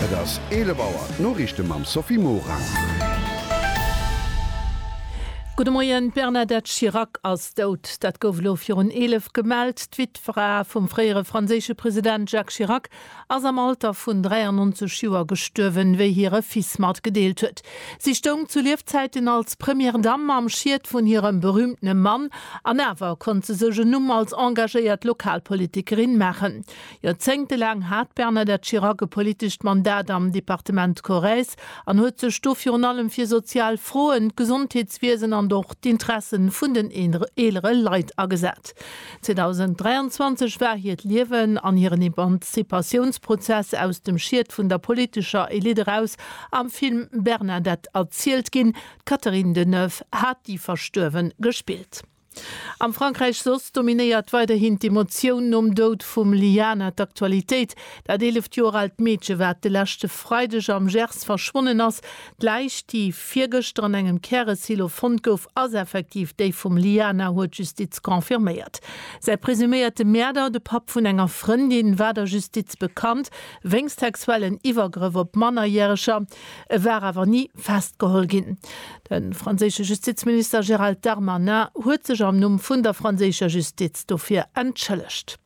Et ass 11 Auer, d'Noriichte mam Sophie Morang. Gudde Moien, D'Bernadette Chirac ass dout. Dat gouf elo virun 11 gemellt. D'Wittfra vum fréiere franséische President Jacques Chirac ass am Alter vun 93 Joer gestuerwen, wéi hire Fils matgedeelt huet. Si stoung zu Liefzäiten als Première Dame am Schiet vun hirem berüümtene Mann an awer konnt se sech en Numm als engagéiert Lokalpolitikerin maachen. Joerzéngte laang hat d'Bernadette Chirac e politescht Mandat am Departement Corrèze an huet sech do virun allem fir sozial Froen, d'Gesondheetswiesen an och d'Interesse vun den eelere Leit agesat. 2023 war hiert Liewen an hiren Emanzipatiounsprozess aus dem Schiet vun der politescher Elite eraus am Film Bernadette erzielt ginn. D'Catherine Deneuve hat déi Verstuerwe gespillt. Am Frankräich soss dominéiert weiderhin d'Emotioun nom Doud vum Liana d'Aktualitéit. Dat eeleft Joer aalt Meedche wat de leschte Freideg am Gers verschwonnen ass. D'Läich, déi virgëschter an engem Käresilo fonnt gouf, ass effektiv déi vum Liana, huet d'Justiz confirméiert. Säi presuméierte Mäerder, de Papp vun enger Frëndin, war der Justiz bekannt wéinst sexuellen Iwwergrëff op Mannerjäreger. E war awer ni festgeholl ginn. De franséische Justizminister Gérald Darmanin huet sech am Numm vun der franséischer Justiz dofir entschëllegt.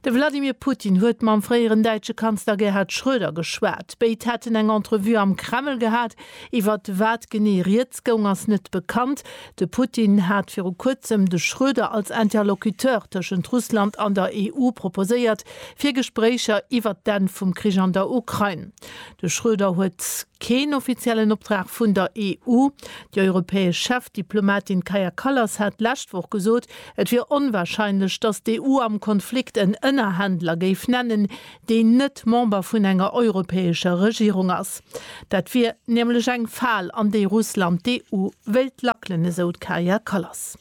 De Wladimir Putin huet mam fréieren däitsche Kanzler Gerhard Schröder geschwat. Béid hätten eng Entrevue am Kreml gehat. Iwwer wat genee rieds goung, ass net bekannt. De Putin hat viru kuerzem de Schröder als Interlocuteur tëschent Russland an der EU proposéiert, fir Gespréicher iwwer d'Enn vum Krich an der Ukrain De Schröder huet keen offiziellen Optrag vun der EU. Déi europäesch Chefdiplomatin Kaja Kallas hat d'lescht Woch gesot, et wier onwarscheinlech, datt d'EU am Konflikt en Ënnerhändler géif nennen, deen net Member vun enger europäescher Regierung ass. Dat wier nämlech eng Fal, an déi Russland d'EU wéilt lackelen, esou d'Kaja Kallas.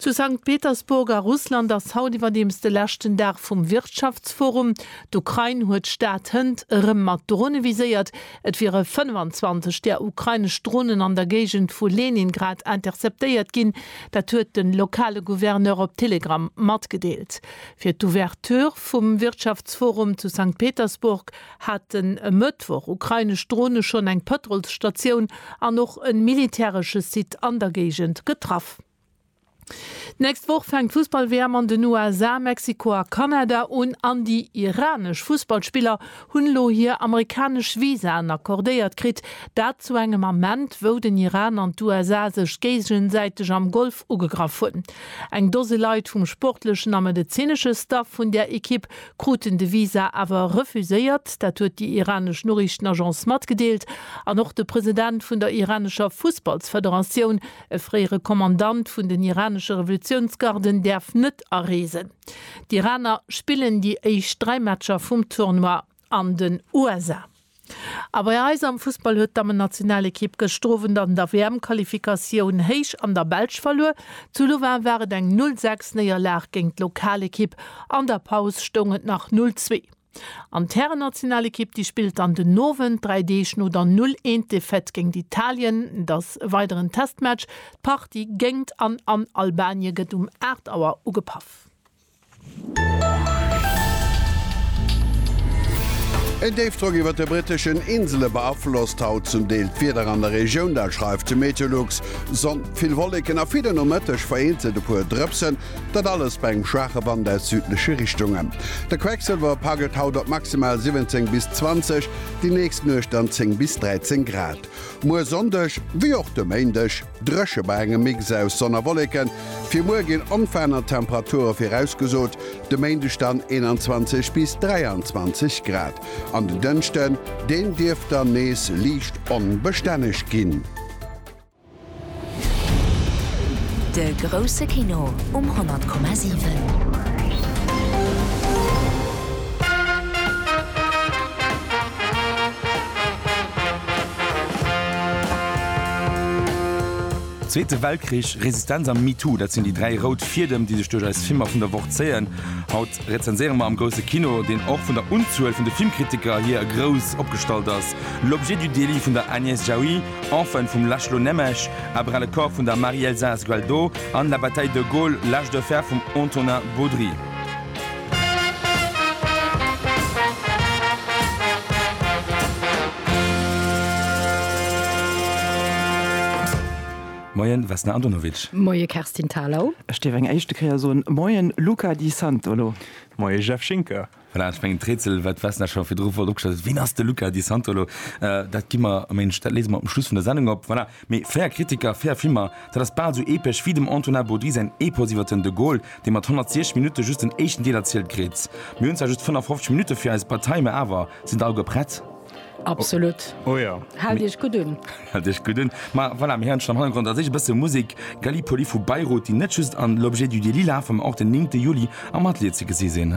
Zu Sankt Petersburg a Russland ass haut iwwerdeems de leschten Dag vum Wirtschaftsforum. D'Ukrain huet d'Stad Hënt erëm mat Drone viséiert. Et wiere 25 där ukrainesch Dronen an der Géigend vu Leningrad interceptéiert ginn. Dat huet de lokale Gouverneur op Telegram matgedeelt. Fir d'Ouverture vum Wirtschaftsforum zu Sankt Petersburg haten e Mëttwoch ukrainesch Drone schonn eng Pëtrolsstatioun an och e militäresche Site an der Géigend getraff. D'nächst Woch fänkt d'Fussball-WM an den USA, Mexiko a Kanada un an déi iranesch Fussballspiller hunn elo hir amerikanesch Visaen accordéiert kritt. Dat zu engem Ament, wou den Iran an d'USA sech géigesäiteg am Golf ugegraff hunn. Eng Dose Leit vum sportlechen a medezinesche Staff vun där Ekipp kruten de Visa awer refuséiert. Dat huet déi iranesch Noriichtenagence matgedeelt. An och de President vun der iranescher Fussballsfederatioun, e fréiere Kommandant vun den iranesche Revolutiounsgarden, däerf net areesen. D'Iraner spillen déi éischt dräi Matcher vum Tournoi an den USA. A bei eis am Fussball huet d'Dammennationalekipp gëschtowend an der WM-Qualifikatioun héich an der Belsch verluer. Zu Louvain war et eng Null Sechs Néierlag géint d'Lokalekipp. An der Paus stoung et nach Null Zwee. An d'Härennationalekipp, déi spillt dann den Owend, dräi Deeg no der Null Eent Defaite géint Italien. Et ass e weideren Testmatch. D'Partie géingt an an Albanien gëtt um 8 Auer ugepaff. En Déifdrock iwwert de britteschen Insele beaflosst haut zum Deel d'Wieder an der Regioun, dat schreift de Meteolux. Sonn, vill Wolleken a fir den Nomëtteg vereenzelt e puer Drëpsen, dat alles bei engem schwaache Wand aus südleche Richtungen. De Quecksëlwer paggelt haut op maximal 17 bis 20, déi nächst Nuecht dann 10 bis 13 Grad. Muer Sonndeg, wéi och de Méindeg, Dréche bei engem Mix aus Sonn a Wolleken. Fir muer ginn onveraanert Temperature virausgesot, de Méindeg dann 21 bis 23 Grad an den Dënschden, deen dierft dann nees liicht onbestänneg ginn. De grousse Kino um 100,7. Zweete Weltkrich, Resistenz a MeToo, dat sinn déi dräi rout Fiedem, déi sech duerch eis Filmer vun der Woch zéien. Haut rezenséiere mer am grousse Kino, deen och vun der Unzuel vun de Filmkritiker hier e grouss opgestallt ass, L'objet du délit vun der Agnès Jaoui, Enfin vum László Nemes, À bras le corps vun der Marie-Elsa Sgualdo an La bataille de Gaulle, l'âge de fer vum Antonin Baudry. Moien Vesna Andonovic. Moie Kerstin Thalau. Ech dierf eng éischte Kéier soen Moien Luca Di Santolo. Moie Jeff Schinker. Voilà, ech mengen d'Rätsel wat d'Vesna scho virdru flott opgestallt huet, ween ass de Luca Di Santolo, dat gi mer am Méindeg, dat léise mer um Schluss vun der Sendung op. Voilà. Mee fair Kritiker, fair Filmer, dat ass bal sou epesch wéi dem Antonin Baudry säin Epos iwwer den De Gaulle, dee mat 106 Minutte just den éischten Deel erzielt kritt. Mir hunn zwar just 55 Minutte fir eis Bataille, mä awer, Sinn der alleguer prett? Absolut. Oh jo. Haalt Iech gutt un. Haalt Iech gutt un. Ma voilà, mir héieren schonn am Hannergrond da séch e bësse Musek, Gallipoli vu Bayreuth, déi net just an L'Objet du délit lafen, mä och den 9. Juli am Atelier ze gesi sinn.